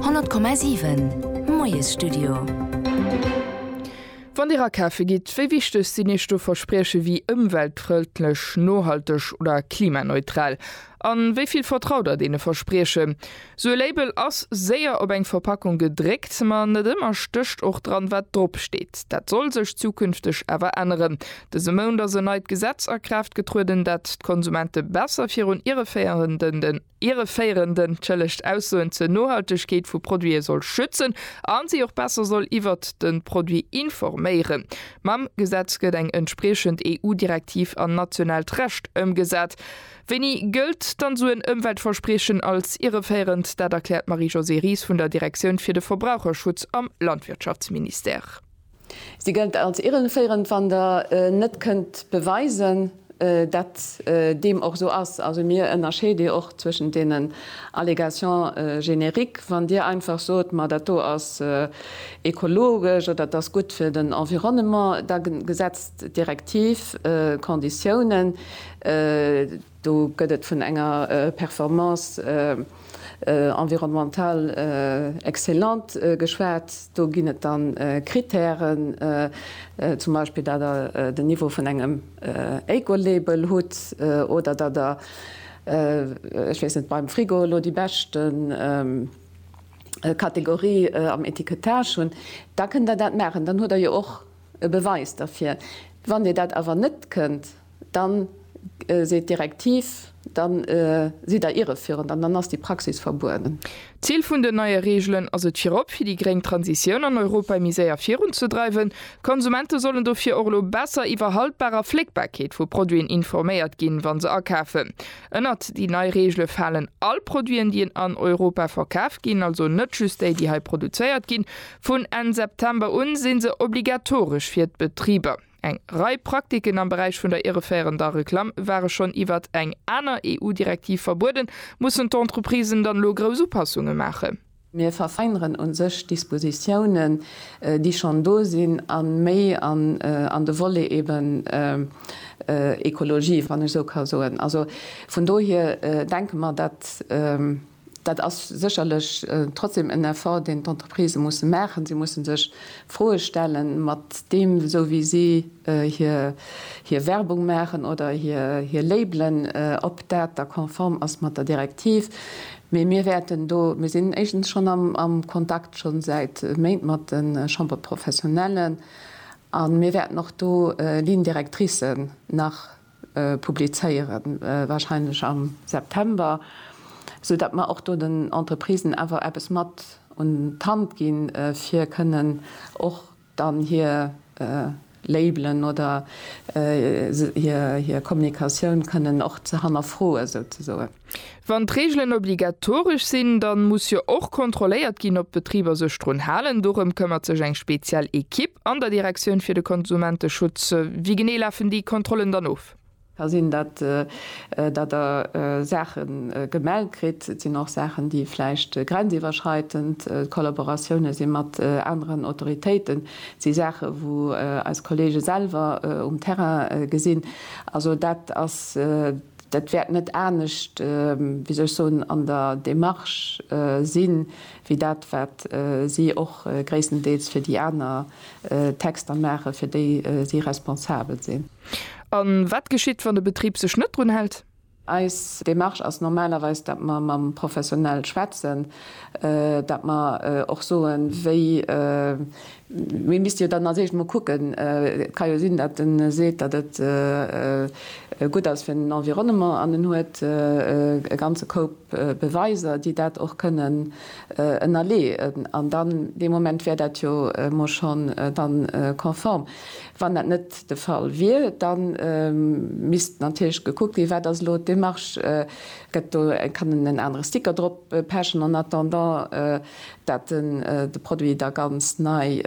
100,7 Moiesstudio. Wann Dir akafe gitt, wéi wichteg sinn Iech do Versprieche wéi ëmweltfrëndlech, nohalteg oder klimaneutral? A wéi vill vertraut Der deene Verspriechen? Sou e Label ass séier op eng Verpackung gedréckt, ma net ëmmer stécht och dran, wat drop steet. Dat soll sech zukünfteg awer änneren. Dëse Mount ass en neit Gesetz a Kraaft getrueden, dat d'Konsumente besser virun ireféierenden. Irreféirend entschëllegt Aussoen zur Nohaltegkeet vu Produite soll schützen a si och besser soll iwwert de Produit informéieren. Mam Gesetz gëtt eng entspriechend EU-Direktiv an nationaalt Recht ëmgesat. Wéini gëllt dann esou en Ëmweltverspriechen als irreféirend? Dat erkläert d'Marie-Josée Ries vun der Direktioun fir de Verbraucherschutz am Landwirtschaftsministère. Si gëllt als irreféierend, wann Der net kënnt beweisen, datt deem och esou ass. Also mir ënnerscheede och zwëschen deenen Allégations génériques, wann Dir einfach sot, ma dat do ass ekologesch oder et ass gutt fir den Environnement, da gesetzt d'Direktiv Konditiounen, Do gëtt et vun enger Performance environnementale excellente geschwat. Do ginn et da Krittären, zum Beispill datt Der den Niveau vun engem Ecolabel hutt oder datt Der, ech weess net, beim Frigo elo déi bescht Kategorie am Etikettage hunn. Da kënnt Der dat maachen. Dann hutt Der jo och e Beweis derfir. Wann Dir dat awer net kënnt. dann seet d'Direktiv, dann sidd Der irreführend an dann ass déi Praxis verbueden. D'Zil vun den neie Reegelen ass et virop fir déi gréng Transitioun an Europa méi séier virunzedreiwen. D'Konsumente sollen dofir och elo besser iwwer Haltbar a Fléckbarkeet vu Produiten informéiert ginn, wa se akafen. Ënnert déi nei Reegele falen all Produiten, déi en an Europa verkaf ginn, also net just déi, déi hei produzéiert ginn. Vun Enn September un si se obligatoresch fir d'Betriber. Eng Rei Praktiken am Beräich vun der irreféierender Reklamm ware schonn iwwert eng aner EU-Direktiv verbueden. Mussen d'Entreprisen dann elo grouss Upassunge maachen? Mir verfeineren u sech Dispositiounen, déi schonn do sinn, a méi an de Volet eben Ekologie, wann ech esou ka soen. Also vun dohier denke mer, datt Dat ass sécherlech trotzdem en Effort, deen d'Entreprisë musse maachen. Si musse sech Froe stellen, mat deem, esou wéi si hir Werbung maachen oder hir Labelen, ob dat da konform ass mat der Direktiv. Mee mir wäerten do, mir sinn éischtens schonn am Kontakt, scho säit Méint, mat de Chambres professionnelles a mir wäerten och do Lignes directrices nach publizéieren, wahrscheinlech am September, sou dat mer och do den Entreprisen awer eppes mat un d'Hand ginn, fir kënnen och dann hir Labelen oder hir Kommunikatioun kënnen och ze hannerfroen, souzesoen. Wann d'Reegelen obligatoresch sinn, dann muss jo och kontrolléiert ginn, ob d'Betriber sech drun halen. Dorëm këmmert sech eng speziell Equipe an der Direktioun fir de Konsumenteschutz. Wéi genee lafen déi Kontrollen dann of? Da sinn dat, datt Der Saache gemellt kritt. Et sinn och Saachen, déi vläicht grenziwwerschreitend, Kollaboratioune si mat aneren Autoritéiten, et si Saache wou eis Kollege selwer um Terrain gesinn. Also dat ass. Dat wäert net anescht, wéi soll ech soen, an der Démarche sinn, wéi dat wat si och gréisstendeels fir déi aner Texter maachen, fir déi si responsabel sinn. A wat geschitt, wann de Betrib sech net drun hält? Eis Démarche ass normalerweis, datt mer mam Professionell schwätzen, datt mer och soen, wéi Mir misste jo dann als éischt emol kucken, et ka jo sinn, datt en seet, datt et gutt ass fir den Environnement an en huet e ganze Koup Beweiser, déi dat och kënnen ënnerleeën, an dann dee Moment wär dat jo emol schonn dann konform. Wann dat net de Fall wier, da misst natierlech gekuckt ginn, wat ass elo d'Démarche, gëtt do, kann en en anere Sticker drop pechen en attendant, dat en de Produit da ganz nei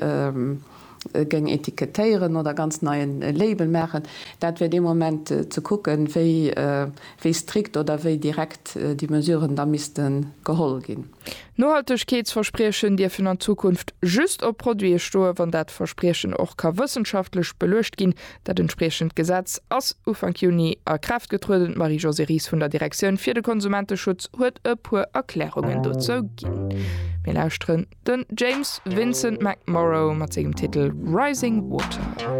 géing etikettéieren oder ganz nei en Label maachen, dat wär dee Moment ze kucken, wéi strikt oder wéi direkt déi Mesuren da misste geholl ginn. Nohaltegkeetsverspriechen dierfen an Zukunft just op Produite stoen, wann dat Verspriechen och ka wëssenschaftlech beluecht ginn, Dat entspriechend Gesetz ass Ufank Juni a Kraaft getrueden. D'Marie-Josée Ries vun der Direktioun fir de Konsumenteschutz huet e puer Erklärungen dozou ginn. Mir lauschteren den James Vincent McMorrow mat sengem Titel Rising Water.